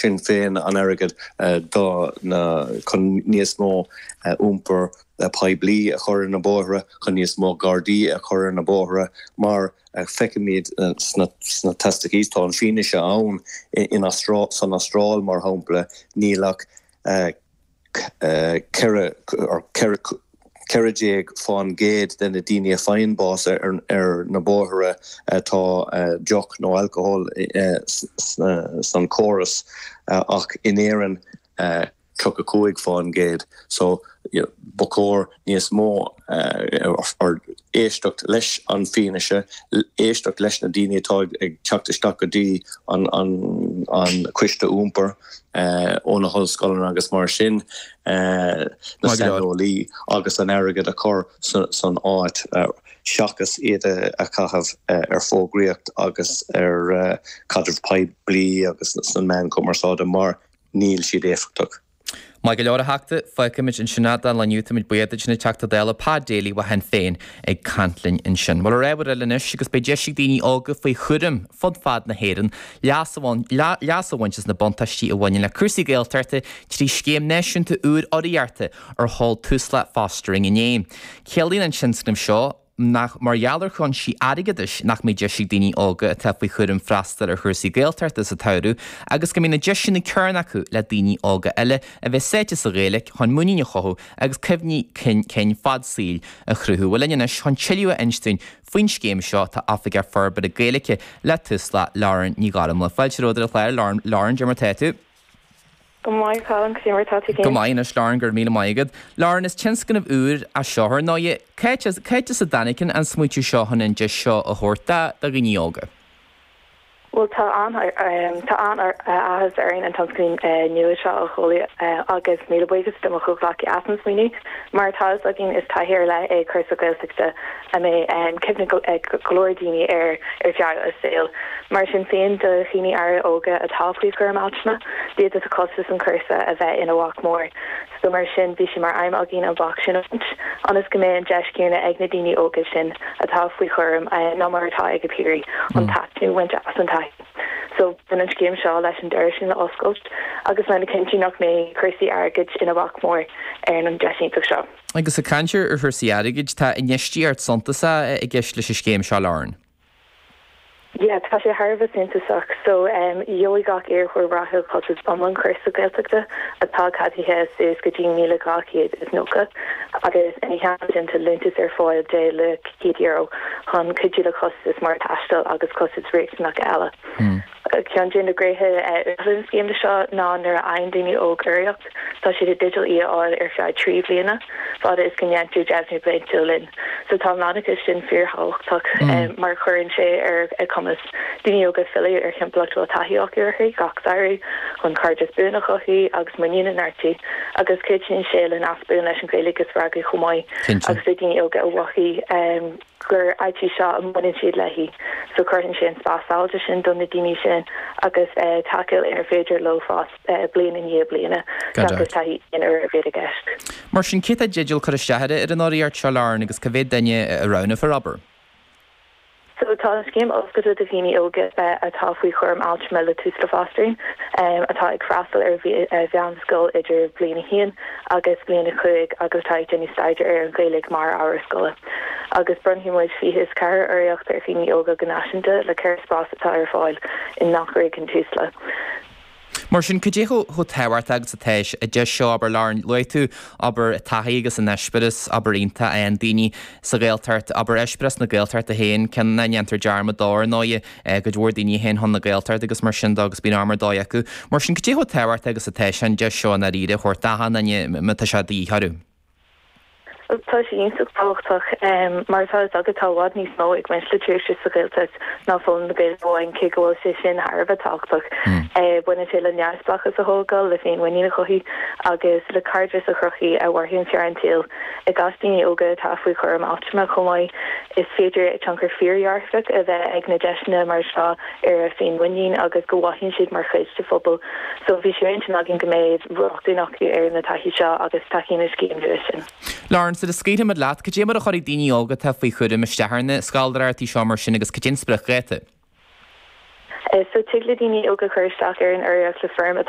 sin féin, an airgead do na, chun níos mó iompar poiblí a chur ar na bóithre, chun níos mó Gardaí a chur ar na bóithre, mar feicimid sna statisticí. Tá an fianaise ann, san Astráil, mar shampla, níl ach. 14 fán gcéad de na daoine a faigheann bás ar na bóithre tá deoch nó alcohol san chóras ach in Éirinn 35 fán gcéad so ba chóir níos mó aird, éisteacht leis an fianaise, éisteacht leis na daoine atá ag teacht isteach go dtí an coiste iompar ó na hollscoileanna agus mar sin na saineolaí agus an airgead a chur san áit seachas iad a chaitheamh ar fógraíocht agus ar chaidreamh poiblí agus sna meáin chumarsáide mar níl siad éifeachtach. Maith go leor, a Theachta. Fágfaimid ansin é, don lá inniu. Táimid buíoch duit, an Teachta Dála Pa Daly ó Shinn Féin ag caint linn ansin. Bhuel, ar aghaidh go rud eile anois agus beidh deis ag daoine óga faoi chúram fud fad na hÉireann leas a bhaint as na buntáistí a bhaineann le cúrsaí Gaeltachta trí scéim náisiúnta úr urraíochta a sheol Tusla Fostering inné. Ciallaíonn an tionscnamh seo, nach mar gheall ar chúinsí airgeadais nach mbeidh deis ag daoine óga atá faoi chúram freastal ar chúrsaí Gaeltachta sa tsamhradh agus go mbeidh na deiseanna céanna acu le daoine óga eile a bheith sáite sa Ghaeilge chun muinín a chothú agus cuimhní cinn fad saoil a chruthú. Bhuel linn anois chun tuilleadh a insint faoin scéim seo tá Oifigeach Forbartha Gaeilge le Tusla, Lauren Ní Ghairmhíle. Fáilte romhat ar an chlár, Lauren. Cad é mar tá tú? Go maith, Colin, cad é mar atá tú féin? Go maith, anois, Lauren, go raibh míle maith agat. Lauren, is tionscnamh úr é seo ar ndóigh. Cad é as a dtáinig an smaoitiú seo chun an deis seo a thabhairt do dhaoine óga? Bhuel, tá an-áthas orainn an tionscnamh nua seo a sheoladh agus míle buíochas do mo chomhghleacaí as an smaoineamh. Mar atá a fhios againn, is taithí ar leith é cúrsa Gaeltachta a mbeidh cuimhne ag go leor daoine air ar feadh a saoil. Mar sin féin, do dhaoine áirithe óga atá faoi chúram altrama, d'fhéadfadh costas an chúrsa a bheith ina bhac mór, so mar sin bhí sé mar aidhm againn an bac sin a bhaint, ionas go mbeidh an deis chéanna ag na daoine óga sin atá faoi chúram ná mar atá ag a bpiaraí an taitneamh a bhaint as an taithí. So baineann an scéim seo leis an doras sin a oscailt agus lena chinntiú nach mbeidh cúrsaí airgid ina bhac mór ar an deis iontach seo. Agus ag caint ar chúrsaí airgid, tá infheistíocht suntasach i gceist leis an scéim seo, Lauren. Yeah, tá sé thar a bheith suntasach. So, gheobhaidh gach iarrthóir rathúil costas iomlán cúrsa Gaeltachta atá ceadaithe suas go dtí €1,290 agus ina theannta sin tá liúntas ar fáil de €100 chun cuidiú le costais mar thaisteal agus costais riachtanach eile. Ceann de na gnéithe uathúla den scéim seo ná nuair a fhaigheann daoine óg urraíocht, tá siad i dteideal í a fháil ar feadh trí bhliana, fad is go ndeintear deimhniú bliantúil linn. So tá an leanúnachas sin fíor-thábhachtach mar cuireann sé ar a cumas daoine óga filleadh ar thimpeallacht a bhfuil taithí acu air gach samhradh, chun cairdeas buan a chothú agus a muinín a neartú agus cuidíonn sé le nasc buan leis an Ghaeilge a spreagadh chomh maith agus le daoine óga a mhothú gur áit í seo a mbaineann siad léi, so cruthaíonn sé an spás sábháilte sin do na daoine sin agus tacúil inar féidir leo fás bliain i ndiaidh bliana seachas taithí aon uaire a bheith i gceist. Mar sin, cé tá i dteideal cur isteach ar an urraíocht seo Lauren agus cé mhéad duine a roghnófar abair. So tá an scéim oscailte do dhaoine óga atá faoi chúram altrama le Tusla Fostering atá ag freastal ar mheánscoil idir bliain a haon agus bliain a cúig agus atá ag déanamh staidéar ar an Ghaeilge mar ábhar scoile. agus bronnfaidh muid fiche a ceathair urraíocht ar dhaoine óga go náisiúnta le ceithre spás atá ar fáil i ngach réigiún Tusla. Mar sin, cad é chomh tábhachtach agus atá sé an deis seo, abair, labhraíonn, luaigh tú, abair, taithí agus an eispéireas, abair, iontach a fhaigheann daoine sa Ghaeltacht, abair, eispéireas na Gaeltachta féin, ceann nach ndéantar dearmad de, ar ndóigh, cuid mhór daoine a théann chun na Gaeltachta agus mar sin de agus bíonn am ar dóigh acu. Mar sin, cad é chomh tábhachtach agus atá sé an deis seo i ndáiríre a thabhairt d'achan duine má tá sé de dhíth orthu? Tá sé iontach tábhachtach mar atá a fhios agat, tá i bhfad níos mó ag baint le tréimhse sa Ghaeltacht ná foghlaim na Gaeilge amháin, cé go bhfuil sé sin thar a bheith tábhachtach. Baineann sé le neamhspleáchas a thógáil, le féinmhuinín a chothú agus le cairdeas a chruthú a mhairfidh ar feadh an tsaoil. I gcás daoine óga atá faoi chúram altrama chomh maith, is féidir tionchar fíordhearfach a bheith ag deiseanna mar seo, ar a féinmhuinín agus go mhothaíonn siad mar chuid de phobal so bhí sé ar intinn againn go mbeadh rochtain acu ar na taithí seo agus tacaíonn an scéim nua leis sin. Lauren, Sula scaoilfimid leat, cad é mar a chuirfidh daoine óga atá faoi chúram isteach ar na scoláireachtaí seo mar sin agus cad é an spriocdháta? So tig le daoine óga cur isteach ar an urraíocht le foirm atá